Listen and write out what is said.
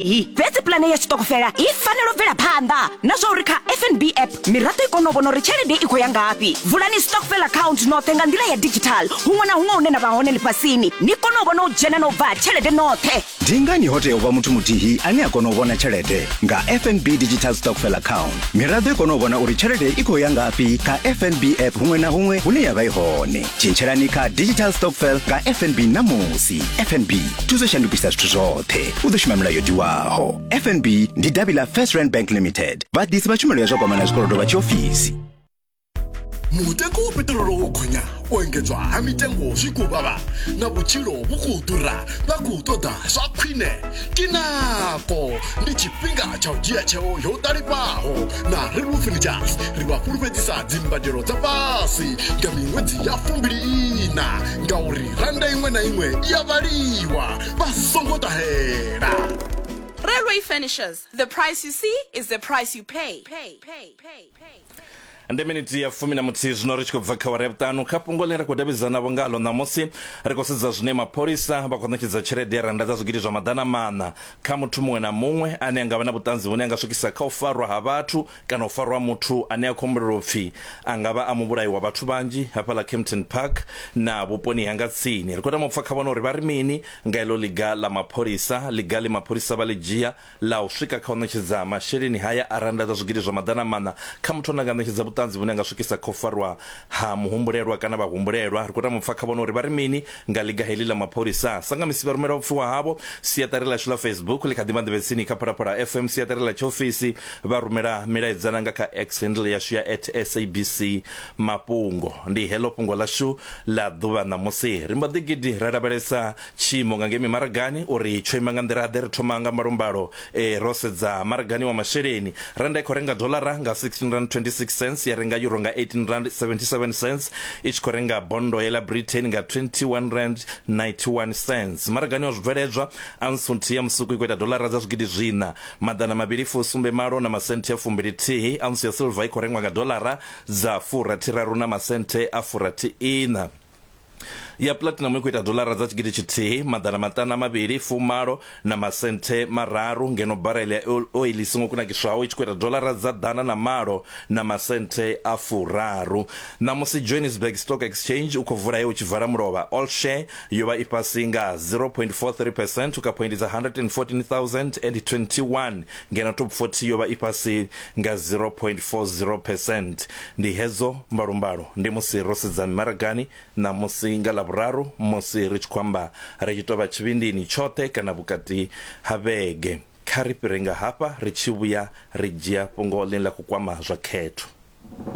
iyi. Fhedzi pulane ya tshiṱokofela i fanela u bvela phanḓa na zwa uri kha FNB app miraḓo i kone u vhona uri tshelede i khou ya ngafhi. Vulani stokvel account noṱhe nga nḓila ya digital huṅwe na huṅwe hune na vha hone ḽifhasini, ni kone u vhona u dzhena na u bva ha tshelede noṱhe. Ndi ngani ho tea u vha muthu muthihi ane a kona u vhona tshelede nga FNB Digital Stockfell Account? Miraḓo i kone u vhona uri tshelede i khou ya ngafhi kha FNB app huṅwe na huṅwe hune ya vha i hone. tshintshelani kha digital stokvel nga fnb ṋamusi fnb thuso shandukisa zwithu zwoṱhe u ḓo shuma milayo tiwaho fnb ndi davhi ḽa first rand bank limited vhaḓisi vha tshumelo ya zwa kwama na zwikolodo vha tshiofisi mutengo wa peṱirolo wo gonya u engedzwa ha mitengo zwi khou vhavha na vhutshilo vhu khou ḓura vha khou ṱoḓa zwa khwine kinako ndi tshifhinga tsha u dzhia tsheo yo ṱalifhaho na rainbow furnitures ri vha fhulufhedzisa dzimbadelo dza fhasi nga miṅwedzi ya fumbiliiṋa ngauri randa iṅwe na iṅwe i ya vhaliwa vha songo ṱahela Railway Furnishers, the price you see is the price you pay. pay, pay, pay, pay, pay. ndi miniti ya fumi na muthihi zwino ri tshi khou bva kha wara ya vhuṱanu kha fhungo ḽine ra khou davhidzanavho ngalo ṋamusi ri khou sedza zwine mapholisa vha khou ṋetshedza tshelede ya randa dza zwigidi zwa maḓana maṋa Kha muthu muṅwe na muṅwe ane a nga vha na vhuṱanzi vhune ha nga swikisa kha u farwa ha vhathu kana u farwa ha muthu ane a khou humbulelwa u pfi a nga vha a muvhulayi wa vhathu vhanzhi hafhaḽa Kempton Park na vhuponi hanga tsini, ri khou tama u pfa kha vhone uri vha ri mini nga heḽo ḽiga ḽa mapholisa. Ḽiga ḽe mapholisa vha ḽi dzhia ḽa u swika kha u ṋetshedza masheleni haya a rannda dza zwigidi zwa maḓana maṋa kha muthu ane a nga ṋetshedza vhuṱanzi vhune ha nga swikisa kha u farwa ha muhumbulelwa kana vhahumbulelwa, ri khou tama u pfa kha vhone uri vha ri mini Nga ḽiga heḽi ḽa mapholisa, Sangamisi vha rumela vhupfiwa havho siaṱari ḽashu ḽa Facebook ḽi kha ḓi vha nḓevhetsini kha Phalaphala FM siaṱari ḽa tshiofisi, vha rumela milaedza na nga kha X handle yashu ya at SABC Mafhungo. Ndi heḽo fhungo ḽashu ḽa ḓuvha ṋamusi. Ri mbo ḓi gidi ra lavhelesa tshiimo nga ngei mimaragani uri tsho ima nga nḓila-ḓe. Ri thoma nga mbalombalo Ee, ro sedza maragani wa masheleni, rannda i khou renga doḽara nga R16.26 cents, ya renga euro nga R18.77 cents, i tshi khou renga bondo ye ḽa Britain nga R21.91 cents. Maragani wa zwibveledzwa, ounce nthihi ya musuku i khou ita doḽara dza zwigidi zwiṋa, maḓana mavhili fusumbe malo na masenthe a fumbili-thihi, ounce ya silver i khou rengwa nga doḽara dza furathi-raru na masenthe a furathi-iṋa. ya platinum i khou ita dolara dza tshigidi tshithihi maḓana maṱanu a mavhili fumalo na masenthe mararu ngeno barel ya oil i songo kunakiswaho i tshi khou ita dolara dza ḓana na malo na masenthe a furaru ṋamusi johannesburg stock exchange u khou vula he u tshi vala mulovha all share yo vha i fhasi nga 0.43 percent u kha phoindi dza 114021 ngeno top 40 yo vha i fhasi nga 0.40 percent. Ndi hedzo mbalombalo ndi musi ro sedza mimaragani ṋamusi nga Ḽavhuraru musi ri tshi khou amba ri tshi tou vha tshivhindini tshoṱhe kana vhukati ha vhege. Kha ri fhire nga hafha ri tshi vhuya ri dzhia fhungo ḽine ḽa khou kwama zwa khetho.